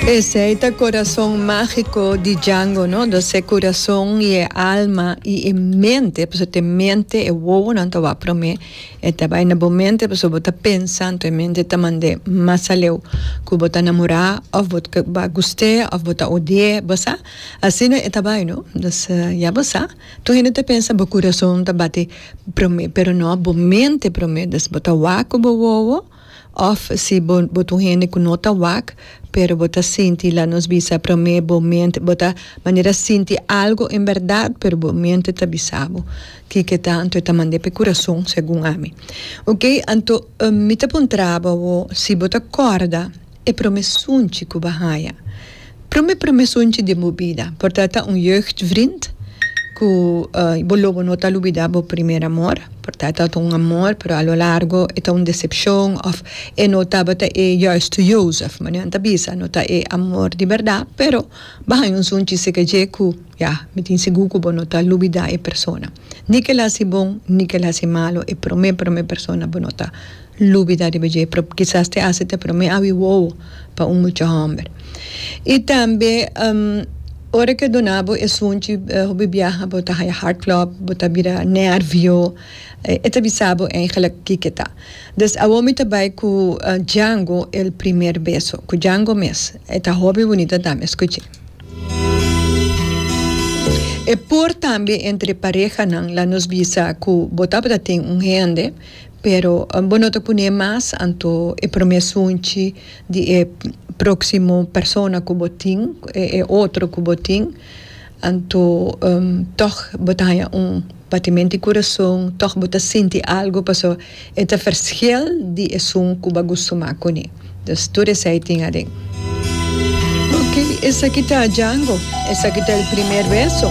Esey ta corazon magico di Django no, do se corazon y e alma y e mente, pasobra ta e mente e wowonan ta wak prome, e ta bay na bo mente pasobra bo ta pensa anto e mente ta mand'e mas aleu cu bo ta namora of bo ta gust'e of bo ta odi'e bo sa, asina e ta bay no, dus ya bo sa, tur hende ta pensa bo corazon ta bati prome pero no bo mente prome, dus bo ta wak cu bo wowo. Òf si bo bo ta un hende ku no ta wak, pero bo ta sinti, la nos bisa promé bo mente, bo ta manera sinti algu en bèrdat, pero bo mente ta bisa bo kiko ta, anto e ta mand'é pa e kurason, segun ami. Oke, anto mi ta puntra bo awó si bo ta kòrda. E prome sunchi ku bo haña. Prome prome sunchi den bo bida por ta ta un jeugdvriend ku bo lo bo no ta lubidá bo primer amor por ta ta un amor pero a lo largo e ta un decepcion òf e no tabata e juiste Jozef bo nan ta bisa no ta e amor di bèrdat pero bo haña un sunchi seke dje ku ya mi tin sigur ku bo no ta lubidá e persona. Ni k'el hasi bon, ni k'el hasi malu, e promé promé persona bo no ta lubidá riba dje, pero kisas te hasi ta promé awi wowo pa un mucha hòmber. I tambe, ora ke duna bo esunchi hopi biaha bo ta haya hartklop, bo ta bira nèrvio, e ta bisa bo eigenlijk kiko ta. Dus awor mi ta bai ku Django el primer beso, ku Django mes. E ta hopi bunita tambe, skuchi. E por tambe entre parehanan la nos bisa cu bo tabata tin un hende pero bo no ta pune mas anto e prome sunchi di e proximo persona cu bo tin e otro cu bo tin anto tog bo ta haña un Batimentu i kurason, tòg bo ta sinti algu paso e ta fershel di esun ku bo a gusto mak kuné. Dus tur esei tin aden. Oke, esaki ta Django. Esaki ta el primer beso.